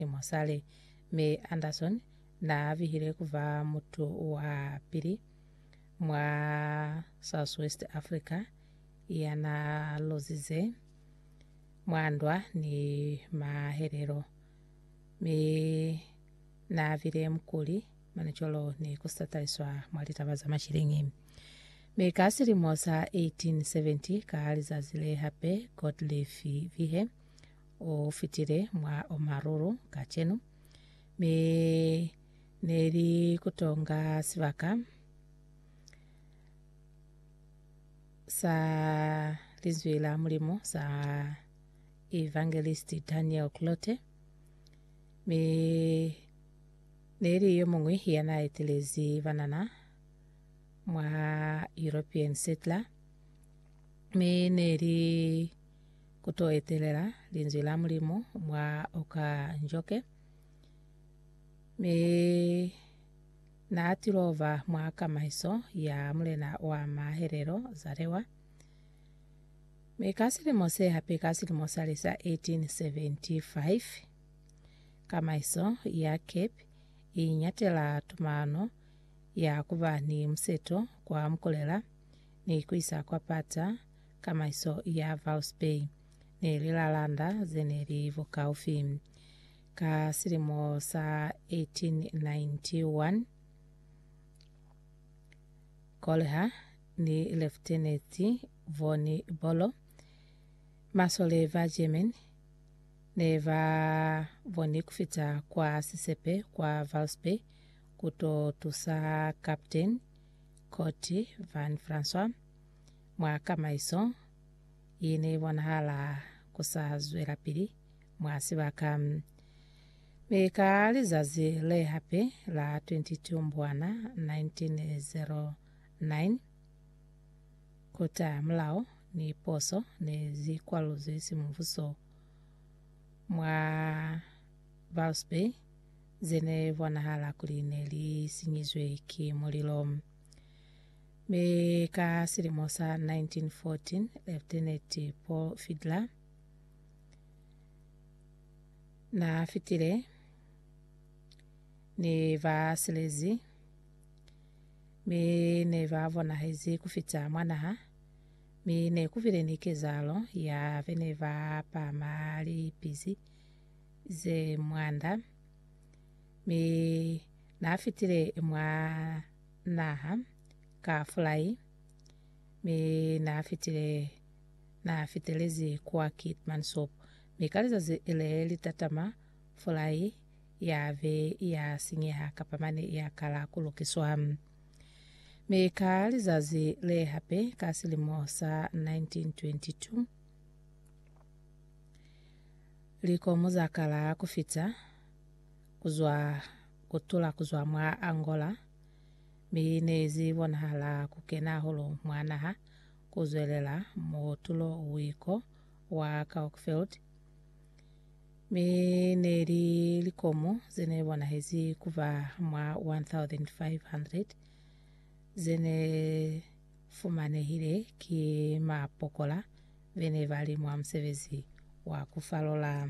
ni musali, mi Anderson na bihile kuba mutu wa pili mwa Southwest Africa yana luzize mwa ndwa ni mahelelo, mi na bile mukuli manicolo ni kusataliswa mwa litaba za mashilingi. Mi ka silimo sa 1870, ka lizazi le hape, Gottlieb Vihe, o fitile mwa o marulu kacenu, mi ne li kutonga sibaka sa Linzwi la Mulimu sa Evangelist Daniel Clote, mi ne li yo mungwi ya na etelezi banana mwa European Settler, mi ne li ku to etelela Linzwi la Mulimu mwa oka njoke. Mi Na tilova mwa kamaiso ya Mulena wa Mahelelo, Zalewa. Mi ka silimo se hape ka silimo sa lisa 1875, kamaiso ya Cape inyatela tumano ya kuba ni museto kwa Mukulela ni kuisa kwa Pata, Kamaiso ya Vouse Bay ne li lalanda ze ne li bukaufi. Ka silimo sa 1891, Colher ni Lieutenant von Bolo, masole ba German, ne ba boni ku fita kwa sisepe kwa Vouse Bay ku to tusa Captain Kurt Van Francois. mwa kamaiso ye ne bonahala ku sa zwelapili mwa sibaka. Mi ka lizazi le hape la 22 Mbwana 1909, kota mulao ni poso ne zi kwaluzwi simubuso mwa Bault's Bay ze ne bonahala kuli ne li sinyizwe ki mulilo. Mi ka silimo sa 1914, Lieutenant Paul Fiedler na fitile ni ba silezi mi ne ba bonahezi ku fita mwa naha, mi ne ku bile ni kezahalo ya be ne ba pama lipizi ze mwanda, mi na fitile mwa naha ka fulai, mi naafitile naafitelezi kwa Keetman Soap, mi ka lizazi le litatama fulai yave ya sinyeha kapa mane ya kala ku lukiswa. Mi ka lizazi le hape ka silimo sa 1922, likomu za kala ku fita, kuzwa kutula kuzwa mwa Angola, mi neizi bonahala kukena hahulu mwa naha kuzwelela mutulo wiko wa Kalkfeld, mi neli likomu zene bonahezi kuba mwa 1,500 zene fumanehile ki mapokola bene bali mwa musebezi wa kufalola.